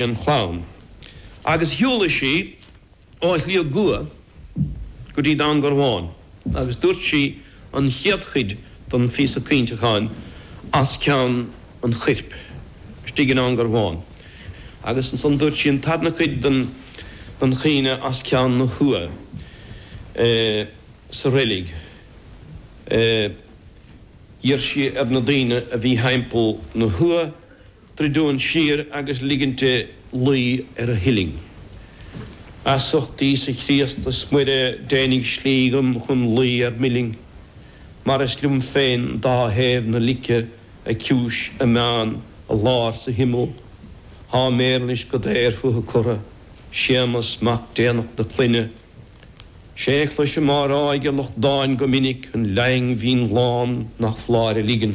an chlann agus shiúladh sí ó Shliabh gCua go dtí Dún Garbhán agus dúirt sí an chéad chuid den phíosa caointeacháin as ceann an chuirp istigh i nDún Garbhán agus ansan dúirt sí an tarna cuid den chaoineadh as ceann na huagha sa reilig. D'iarr sí ar na daoine a bhí thimpeall na huagha. druidim siar agus ligint di luí ar a huillinn. As ucht Íosa Chríost is Muire déanaíg slí dhom chun luí ar m'uillinn, mar is liom féin dá thaobh na lice, a ciumhais, a meán, a lár 's a himeall. Thá Muiris go daor fúithi curtha, Séamas mac déanach na clainne. 'Sé chloisim á rádh ag a lucht dáin go minic, an laoigh in mhionnán nach f'láir a ligean.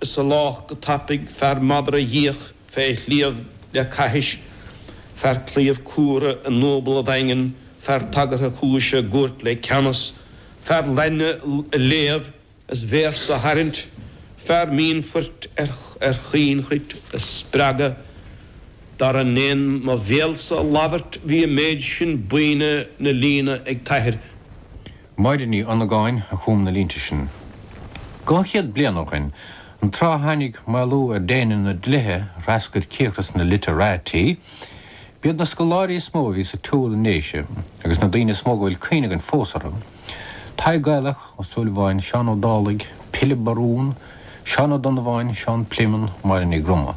Is eolach go tapaidh fear madra a d'fhiach fé shliabh le caithis, fear claíomh cumhra i ndúbladh daingean, fear tagartha cúise i gcúirt le ceannas, fear lainne a léamh is véarsa a tharraint, fear mínphoirt ar chaoinchruit a spreagadh. Dar a ndéan mo bhéalsa a labhairt bhí an méid sin buíne 'na líne ag t'athair. Máire Ní Dhonnagáin a chum na línte sin. Dhá chéad bliain ó shoin, an tráth a tháinig maolú ar déine na dlíthe a threascair tírghrá na 'literati', b'iad na scoláirí is mó a bhí sa tsiúl i nDéise, agus na daoine is mó go bhfuil cuimhne againn fós orthu, Tadhg Gaelach, Ó Súilleabháin, Seán Ó Dálaigh, Pilib Barún, Seán Ó Donnabháin, Seán Pléimeann, Máire Ní Dhroma.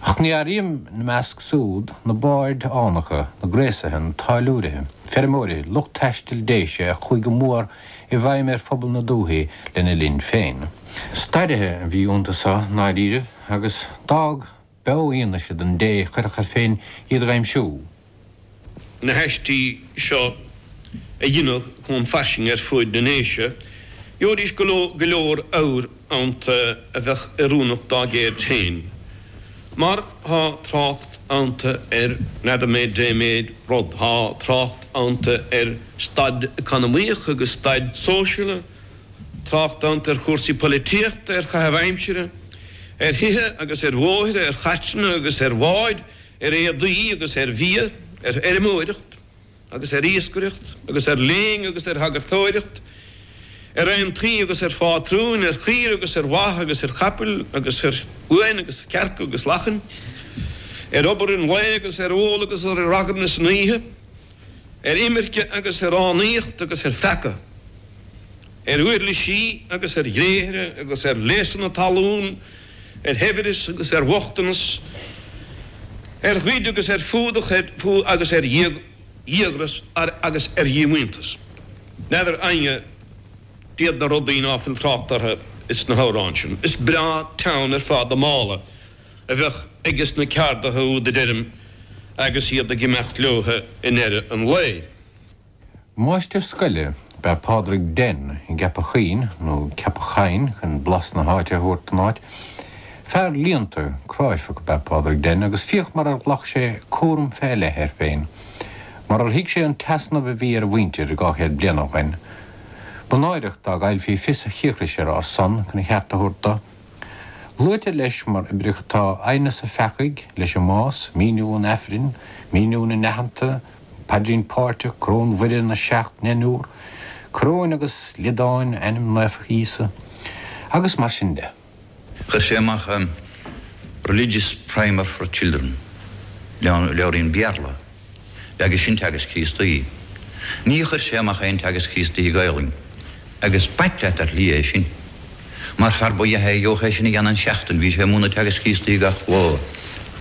Ach ní áirím ina measc súd na baird fhánacha, na gréasaithe, na táilliúirithe, feirmeoirithe, lucht taistil Déise a chuaigh go mór i bhfeidhm ar phobal na dúthaí lena linn féin. Stairithe a bhí iontu seo, ndáiríribh, agus d'fhág beo fhianaise don té a chuirfeadh air féin iad a aimsiú. na haistí seo a dheineadh chomh fairsing ar fuaid na nDéise, gheobhaidís go leor ábhair ionta a bheadh oiriúnach dá gceird féin, mar thá trácht ionta ar readymade, dé-made, rud, thá trácht ionta ar staid economaíoch agus staid sóisialta, trácht ionta ar chúrsaí poilitíochta, ar chaitheamh aimsire, ar thithe agus ar bhóithre, ar chairteanna agus ar bháid, ar éadaí agus ar bhia, ar fheirmeoireacht agus ar iascaireacht agus ar léann agus ar shagartóireacht, ar aontaí agus ar phátrúin, ar chaoirigh agus ar bha agus ar chapaill agus ar uain agus cearca agus lachain, ar obair an lae agus ar ól agus ar ragairne san oíche. ar imirce agus ar fhánaíocht agus ar pheaca, ar uirlisí agus ar ghréithre agus ar léasanna talún, ar shaibhreas agus ar bhochtanas, ar ghoid agus ar fuadach, ar fuath agus ar dhíogras agus ar dhíomhaontas. N'fheadar éinne d'iad na rudaí ná fuil trácht orthu sna hamhráin sin. Is breá teann ar fad an mála. a bheadh aiges na ceardaithe úd a deirim agus iad ag imeacht leotha i ndeireadh an lae. Máistir scoile ab ea Pádraig Den i gCeapach Chuinn, nó Ceapach Choinn chun blas na háite a thabhairt don áit. Fear léannta, cráifeach ab ea Pádraig Den agus féach mar ar ghlac sé cúram fé leith air féin, mar ar thuig sé an t-easnamh a bhí ar a mhuintir dhá chéad bliain ó shoin. Ba náireach dá gcaillfí fios a chíocrais ar ár son chun a cheart a thabhairt do. Luaitear leis mar oibreacha atá aighneas an pheacaigh leis an mbás, míniú an Aifrinn, míniú na n-aitheanta, an paidrín páirteach, Coróin Mhuire, na seacht ndeichniúr, coróin agus liodáin, ainm naofa Íosa, agus mar sin de. Chuir sé amach an Religious Primer for Children, leabhairín Béarla. Ab ea é sin Teagasc Críostaí. Ní chuir sé amach aon Teagasc Críostaí Gaelainn. Agus b'ait leat ar shlí é sin. Mar fear ab ea é a gheobhadh é sin a dhéanamh i seachtain, bhí sé ag múineadh Teagasc Críostaí gach lá.